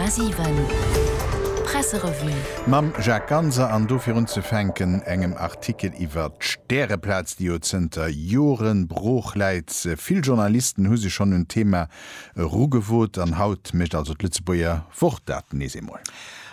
100,7 Presserevue. Mam Jacques Ganser an dofir unzefänken engem Artikel iwwert d'Stäreplaz, déi jo zënter Jore brooch läit. Vill Journalisten hu sech schonn un d'Thema erugewot an haut mécht also d'Lëtzebuerger Wort dat nees eemol.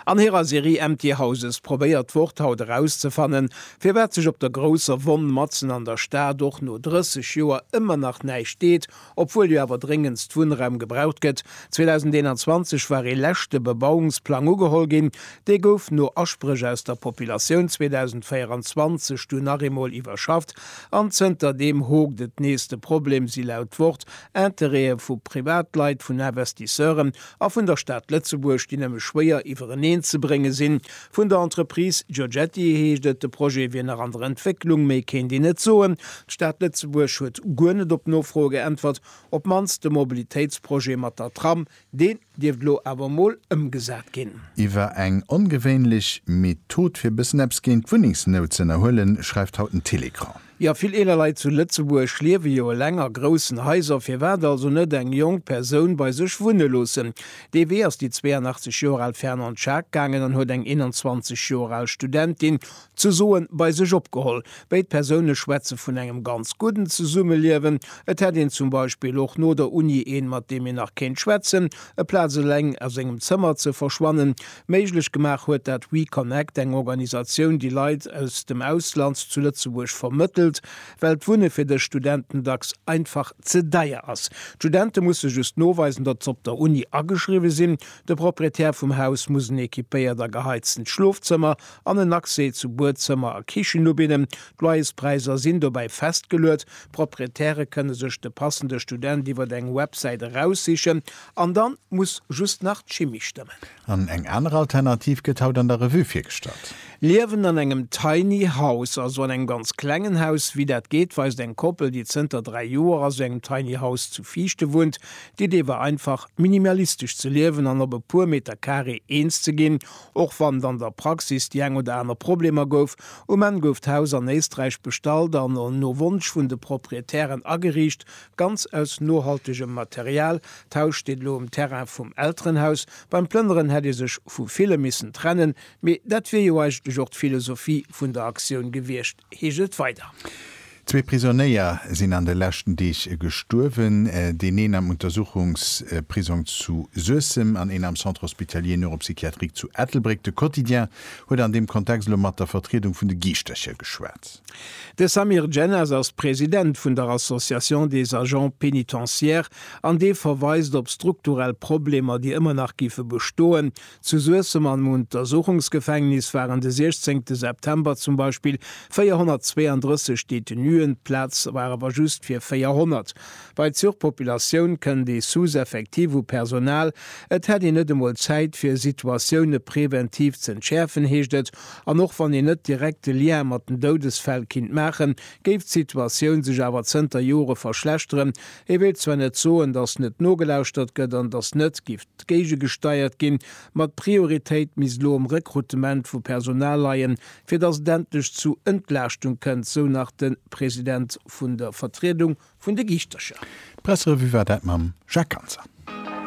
An hirer Serie Empty Houses probéiert d'Wort haut erauszefannen, firwat sech op der grousser Wonn matzen an der Stad och no 30 Joer ëmmer nach näischt deet Obwuel jo awer dréngendst Wunnraum gebraucht gëtt. 2021 war ee leschte Bebauungsplang ugeholl ginn. Dee gouf no Aspréch aus der Populatioun 2024 dunn nach eemol iwwerschafft an zënter deem hokt et nees. De Problem si laut Wort Interêtë vu Privatleit, vun Investisseuren a vun der Stad Lëtzebuerg, déi nëmme schwéier iwwereneen ze brénge sinn. Vun der Entreprise Giorgetti heescht et, de Projet wier nach an der Entwécklung, méi kéint een net soen. D'Stad Lëtzebuerg huet guer net op d'Nofroe geäntwert, op d'mannst de Mobilitéitsprojet mat der Tram, deen dierft elo awer emol ëmgesat ginn. Iwwer eng ongewéinlech Method fir bëssen eppes géint d'Wunnengsnout ze ënnerhuelen, schreift haut den Télécran. Jo, vill eeler Leit zu Lëtzebuerg liewe jo eleng a groussen Haiser. Firwat also net eng jonk Persoun bei sech wunne loossen? Dee Wee ass déi 82 Joer al Fernande Schaack gaangen an huet eng 21 Joer al Studentin zu Soen bei sech opgeholl. Béid Persoune schwätze vun engem ganz gudden Zesummeliewen. Et hätt een zum Beispill och no der Uni een, mat deem een nach kéint schwätzen. Eplaz eleng a sengem Zëmmer ze verschwannen, Méiglech gemaach huet dat WeConnect, eng Organisatioun, déi Leit aus dem Ausland zu Lëtzebuerg vermëttelt, well d'Wunne fir dës Studenten dacks einfach ze deier ass. D'Studente musse just noweisen, datt se op der Uni ageschriwwe sinn. De Proprietär vum Haus muss en equipéiert a geheiztent Schlofzëmmer an en Accès zu Buedzëmmer a Kichen ubidden. D'Loyerspräisser sinn dobäi festgeluet. D'Proprietäre kënne sech de passende Student iwwer eng Websäit eraussichen An dann muss just nach d'Chimie stëmmen. An eng aner Alternativ gëtt haut an der Revue virgestallt. Liewen an engem Tiny House, also an engem ganz klengen Haus. Wéi dat geet, weist eng Koppel, déi zënter 3 Joer a sou engem Tiny House zu Viichte wunnt. D'Idee war einfach, minimalistesch ze liewen an op e puer Meter Carré eens ze ginn. Och wann et an der Praxis déi eng oder aner Problemer gouf. Um Enn gouf d'Haus an Éisträich bestallt an no Wonsch vun de Proprietären ageriicht, Ganz aus nohaltegem Material tauscht een elo um Terrain vum Elterenhaus. Beim Plënneren hätt ee sech vu ville missen trennen, mee dat wier jo eigentlech och d'Philosophie vun der Aktioun gewiescht, heescht et weider. Zwee Prisonéier sinn an de leschten Deeg gestuerwen. Deen een am Untersuchungsprisong zu Suessem an een am Centre hospitalier neuropsychiatrique zu Ettelbréck. De Quotidien huet an deem Kontext elo mat der Vertriedung vun de Giischtercher geschwat. De Samir Djennas ass President vun der Association des agents pénitentiaires an dee verweist op strukturell Problemer, déi ëmmer nach géife bestoen. Zu Suessem am Untersuchungsgefängnis waren de 16 te September zum Beispill 432 Detenuen, d'Plaz war awer just fir 400. Bei d'Surpopulatioun kënnt ee Sous-Effectif u Personal. Et hätt een net emol Zäit fir Situatioune preventiv z'entschäerfen, heescht et. An och wann een net direkt de Lien mat den Doudesfäll kinnt maachen, géif d'Situatioun sech awer zënter Jore verschlechteren. Et wéilt zwar net soen, datt net nogelauschtert gëtt an datt net giff géigegesteiert ginn, ma d'Prioritéit misst elo um Rekrutement vu Personal leien, fir datt et endlech zu Entlaaschtung kënnt, sou nach de President vun der Vertriedung vun de Giischtercher. D'Presserevue war dat mam Jacques Ganser.